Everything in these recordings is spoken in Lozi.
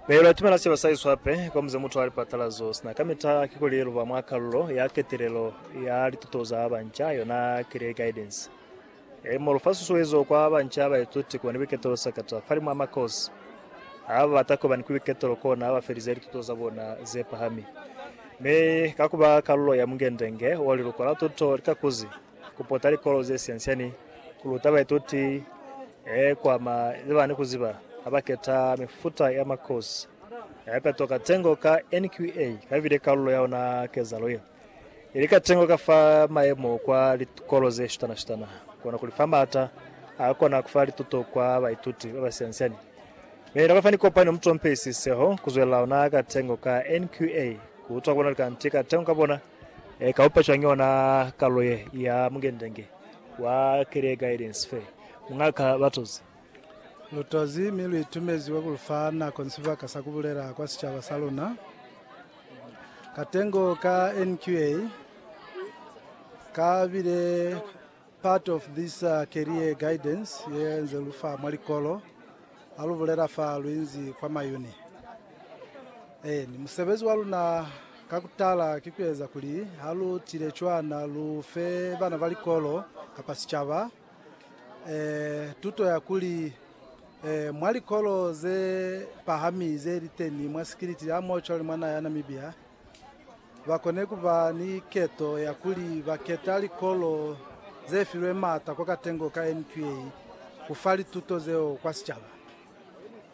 Pelo ya tumela sicaba sa Yesu hape kwa muze mutu a li patalazo sina kamita kikuli luba mwa kalulo ya ketelelo ya lituto za banca, yona Career Guidance. E mo lufa susuezo kwa banca baituti kuba ni buiketelo sakata fali mwa makozi a ba bata kuba ni buiketelo kona ba felize lituto za bona ze pahami. Mi ka kuba kalulo ya mungendenge o liluko la tuto lika kuzi, Ku pota likolo ze siansia ni ku luta baituti he kuama ze bana ni ku ziba ha ba keta mifuta ya makosi ya mipeto ka tengo ka NQA ka bile kalulo ya ona kezalo ye ili ka tengo ka fa mayemo kwa likolo ze shutana-shutana kona kuli fa maata a kona ku fa lituto kwa baituti ba ba siansia ni mi na ba fa ni kopani ya mutompeli siseho ku zwelela ona ka tengo ka NQA ku utwa ku bona likanti ka tengo ka bona E ka upa cwañi yona kalulo ye ya Mungendenge wa Career Guidance Fair? Mu nga ka ba tozi. Lu tozi mi lu itumeziwe ku lu fa nako ni sibaka sa ku bulela kwa sicaba sa luna. Katengo ka NQA ka bile. Part of this career guidance ye nze lu fa mwa likolo ha lu bulela fa lu inzi kwa mayuni. Eeni, musebezi wa luna ka ku tala ki ku eza kuli ha lu tile cwana lu fe bana ba likolo kapa sicaba eh, tuto ya kuli eh, mwa likolo ze pahami ze li teni mwa Sikiliti ya Mochwa le mwa naha ya Namibia, ba kone ku ba ni keto ya kuli ba keta likolo ze filwe m'ata kwa katengo ka NQA ku fa lituto zeo kwa sicaba.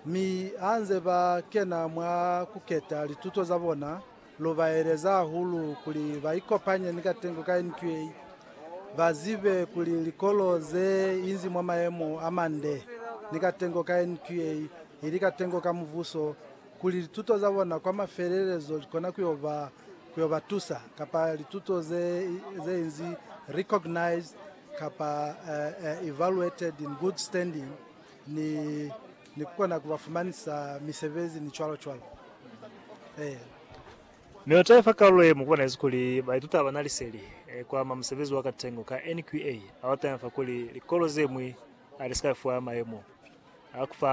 Mi ha nze ba kena mwa ku keta lituto za bona, lu ba eleza hahulu kuli ba ikopanye ni katengo ka NQA, ba zibe kuli likolo ze inzi mwa mayemo a mande ni katengo ka NQA ili katengo ka Mubuso, kuli lituto za bona kwa mafelelezo li kona ku yo ba ku yo ba tusa, kapa lituto ze ze inzi recognized kapa evaluated in good standing, ni ni ku kona ku ba fumanisa misebezi ni cwalo cwalo. Eya. Mi u taifa kalulo ye mu bonezi kuli baituta ba na liseli ku ama musebezi wa katengo ka NQA. A wa taifa kuli likolo ze ñwi a li si ka fiwa mayemo a ku fa